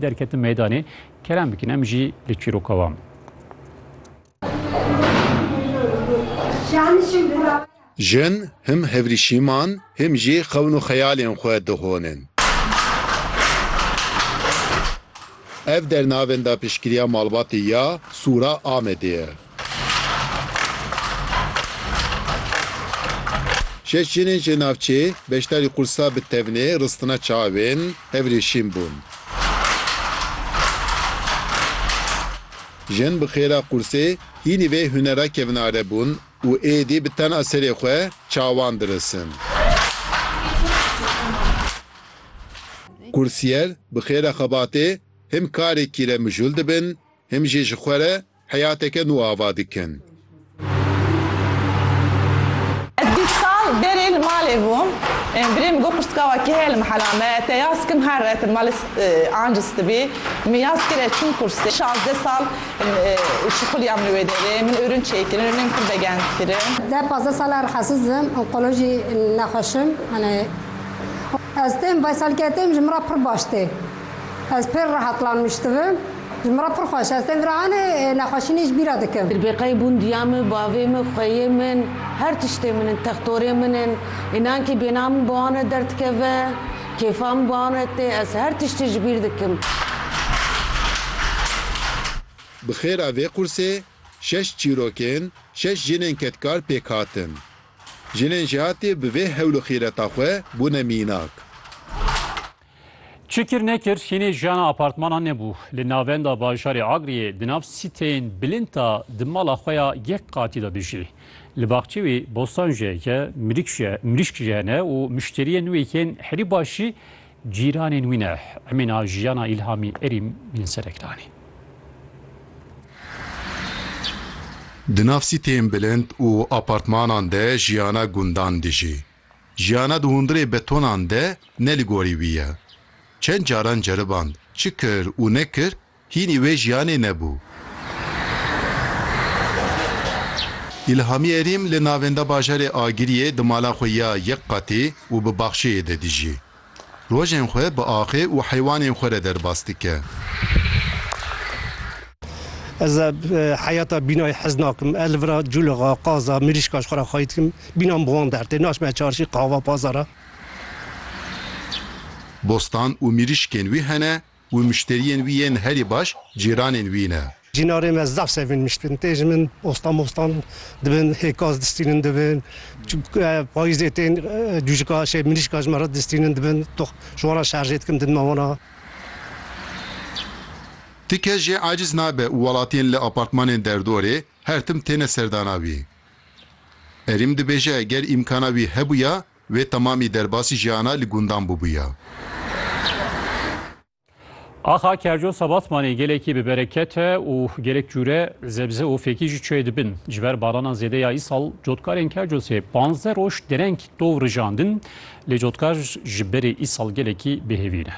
Derketim meydanê kerem bikin em jî li çîroka wan. Jin him hevrîşîman him jî xewn û xeyalên xwe dihonin. Ev dernavenda piştgiriya malbatê ya Sûra Amedê ye. Şeş jinên ji navçê beşdarî qursa bi tevnê ristina çavên hevrê şîn bûn. Jin bi xêra qursê hînî vê hunera kevnare bûn û êdî bi tena serê xwe çawan dirisin. Kursiyer bi xêra xebatê him karê kîremijûl dibin him jî ji xwe re Heyateke nû ava dikin. Ez bîst sal berê li malê bûm. Birê min got pirtika we kî heye li mehela me. Te yaz kim her re te malê anciz tibî. Min yaz kir ez çûm kursê. Şazdeh sal şixuliyam li wê derê. Min ûrûn çêkirin, ûrûnên xwe begend kirin. Deh pazdeh sal e rehesiz im, onkolojî nexweş im. Ez tên veselketêm ji min re pir baş tê. Ez pir rehet lanmiş dibim. Ji min re pir xweş e. Ez tên vira hanê nexweşî nê ji bîra dikim. Ribêkayê bûn diya min, bavê min, xweyê min, her tiştê min in, textorê min in. Înan kî bêhna min bi wan re derdikeve, kêfa min bi wan re tê. Ez her tiştî ji bîr dikim. Bi xêra vê qursê şeş çîrokên, şeş jinên kedkar pêk hatin. Jinên jêhatî bi vê hewl û xîreta xwe bûne mînak. Çi kir nekir hînê jiyana apartmanan nebû. Li navenda bajarê Agriyê di nav sîteyên bilind de di mala xwe ya yek qatî de dijî. Li baxçê wî bostan jî heke, mirîşk jî hene û muşteriyên wê yên herî baş jî cîranên wî ne. Emîna jiyana Îlhamî Erîm min serek danî. Di nav sîteyên bilind û apartmanan de jiyana gundan dijî. Jiyana di hundirê betonan de ne li gorî wî ye. Çend caran ceriband, çi kir û nekir, hînî wê jiyanê nebû. Îlhamî Erîm li navenda bajarê Agiriyê di mala xwe ya yek qatî û bi baxçeyê de dijî. Rojên xwe bi axê û heywanên xwe re derbas dike. Ez ê heyata bînayê hez nakim. Ez li vira cûlixa, qaza, mirîşka ji xwe re xwayî dikim. Bîna min bi wan dertê. Naçme çarşî, qahwa, pazara. Bostan û mirîşkên wî hene Û mişteriyên wî yên herî baş cîranên wî ne. Cînarê me zaf sevîn miştin. Tê ji min ostan mostan dibin, hê kas distînin dibin. Çimk payîzê tên dûjika şey mirîşka ji me re distînin dibin. Tox ji wan re şerjê dikim din me wana. Ti kes jê aciz nabe û welatiyên li apartmanên derdorê her tim têne serdana wî. Erîm dibêje ger îmkana wî hebûya Wê temamî derbasî jiyana li gundan bûbûya. Axa Kerco Sebatmanê gelekî bi bereket e û gelek cûre zebze û fêkî jî çûye dibin. Ji ber baranan zêde ya îsal cotkarên Kercosê panzdeh roj dereng tov rijandin lê cotkar ji berê îsal gelekî bêhêvî ne.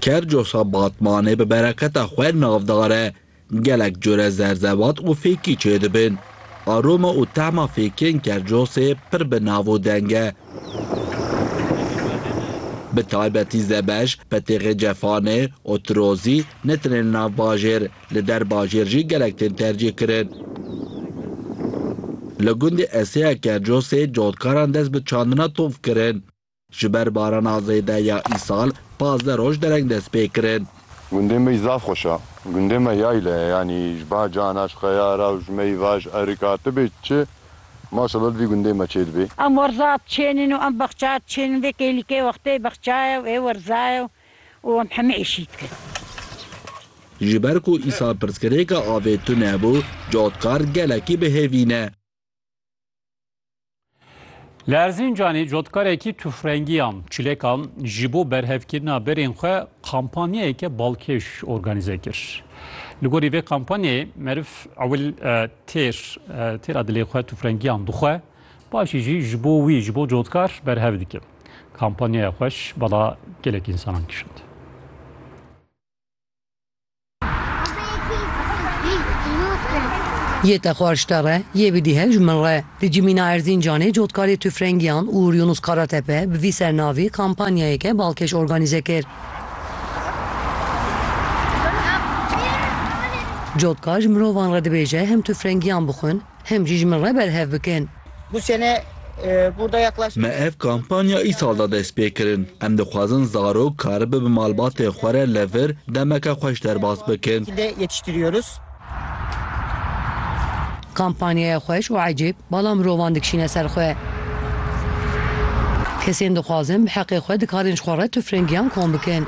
Kerco Sebatmanê bi bereketa xwe navdar e. Gelek cure zerzevat û fêkî çêdibin. Aroma û tehma fêkên Kercosê pir bi nav û deng e. Bi taybetî Zebej, Petêxê Cefanê, Otirozî ne tenê li nav bajêr, li der bajêr jî gelek tên tercîh kirin. Li gundê Eseya Kercosê cotkaran dest bi çandina tov kirin. Ji ber barana zêde ya îsal pazdeh roj dereng dest pê kirin. Gundê mey zaf xweş a. Gundê me yayle ye yanî ji ba cana ji xeyara û ji mey va ji erika ti bê çi maşallah li vî gundê me çê dibê. Em werza diçênîn û em bexça diçênîn vê kêlîkê wextê bexça ye û ê werza ye û em hemî êşî dikin. Ji ber ku îsal pirsgirêka avê tune bû, cotkar gelekî bi hêvî ne. Li Erzîncanê cotkarekî tufrengiyan çilêkan ji bo berhevkirina berên xwe kampanyayeke balkêş organîze kir. Li gorî vê kampanyayê meriv ewil e, têr e, têra dilê xwe tufrengiyan dixwe, paşî jî ji bo wî ji bo cotkar berhev dike. Kampanyaya xweş bala gelek însanan kişand. Yê te xwe ji te re, yê bidîhe ji min re. Di cimîna Erzîncanê cotkarê tufrengiyan Uğur Yunus Karatepe bi vî sernavî kampanyayeke balkêş organîze kir. Cotkar ji mirovan re dibêje hem tufrengiyan bixwin hem jî ji min re berhev bikin. Me ev kampanya îsal de dest pê kirin. Em dixwazin zarok karibe bi malbatên xwe re li vir demeke xweş derbas bikin. Kampanyaya xweş û ecêb, bala mirovan dikişîne ser xwe. Kesên dixwazin bi heqê xwe dikarin ji xwe re tufrengiyan kom bikin.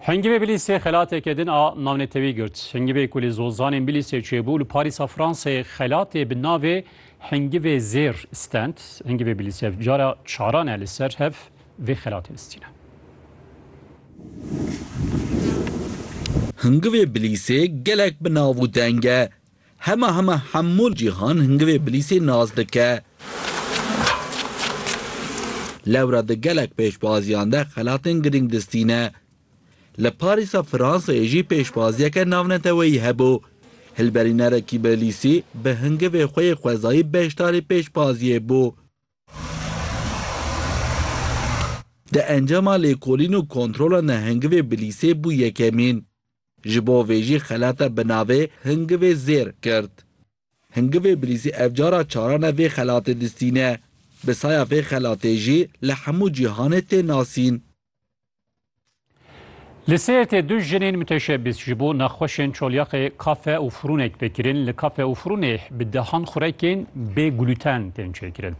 Hengî vê Bilîsê xelateke din a navnetewî girt. Hengî vê ku li zozanên Bilîsê çêbû li Parîsa Fransê xelatê bi navê Hengî vê Zêr stend. Hengî vê Bilîsê ev cara çaran e li ser hev vê xelatê listîne. Hingivê Bilîsê gelek bi nav û deng e. Hema hema hemû cîhan hingivê bilîsê nas dike. Lewra di gelek pêşbaziyan de xelatên girîng distîne. Li Parîsa Fransayê jî pêşbaziyeke navneteweyî hebû. Hilberînerekî bilîsî bi hingivê xwe yê xwezayî beşdarî pêşbaziyê bû. Di encama lêkolîn û kontrolan de hingivê bilîsê bû yekemîn. Ji bo vê jî xelata bi navê Hingivê Zêr girt. Hingivê Bilîzî ev cara çarane vê xelatê distîne. Bi saya vê xelatê jî li hemû cîhanê tê nasîn. Li Sêrtê du jinên muteşebîs ji bo nexweşên çolyaxê kafe û furûnek tê kirin. Li kafe û furûnê bi dehan xurekên bê glûten tên çêkirin.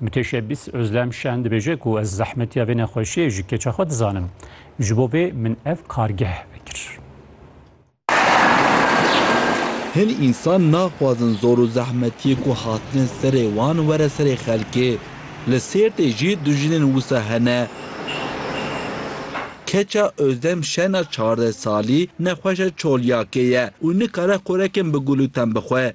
Muteşebîs Ozlem Şen dibêje ku ez zehmetiya vê nexweşiyê ji keça xwe dizanim. Ji bo vê min ev kargeh vekir. Hin însan naxwazin zor û zehmetiyê ku hatine serê wan were serê xelkê. Li Sêrtê jî du jinên wisa hene. Keça Ozdem Şena çardeh salî nexweşa çoliyakê ye û nikare xurek in bi gul û tem bixwe.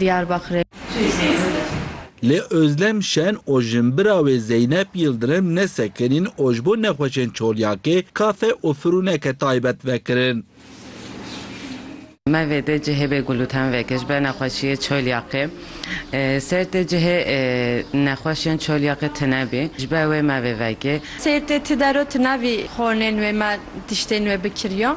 Diyarbakirê. Lê Ozlem Şen û jinbira wê Zeynep Yildirim ne sekinîn û ji bo nexweşên Çolyakê kafe û firûneke taybet vekirin. Me vê dê cihê bê gulûten vekir ji ber nexweşiyê Çolyakê. Ser tê cihê nexweşên Çolyakê tune bî. Ji ber wê me vê vekê. Ser tê ti der o tune bî. Xornên wê me tiştên wê bikiriyo.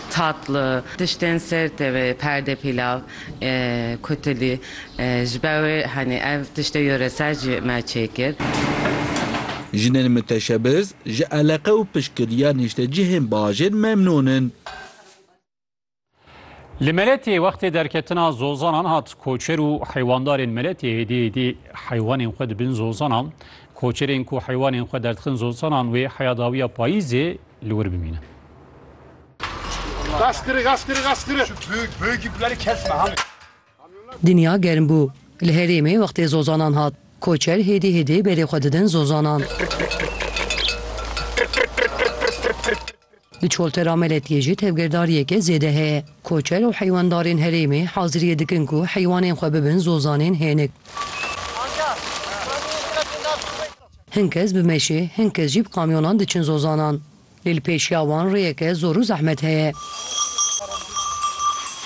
Tatlı, tiştên ser tevê, perde pilav, kutilî, ji ber wê henî ev tiştê yoresel jî me çêkir. Jinên miteşebiz ji eleqe û piştgiriya nîştecihên bajêr memnûn in. Li Meletiyê wextê derketina zozanan hat, koçer û heywandarên Meletiyê hêdî hêdî heywanên xwe dibin zozanan. Koçerên ku heywanên xwe derdixin zozanan wê heyadawiya payîzê li wir bimînin. Gaz kırı, gaz kırı, gaz kırı. Şu büyük, büyük ipleri kesme hani. Dinya germ bû. Li herêmê wextê zozanan hat. Koçer hêdî hêdî berê xwe didin zozanan. Di çoltera Meletiyê jî tevgirdariyeke zêde heye. Koçer û heywandarên herêmê haziriyê dikin ku heywanên xwe bibin zozanên hênik. Hin kes bi meşê, hin kes jî bi kamyonan diçin zozanan. Lê li pêşiya wan rêyeke zor û zehmet heye.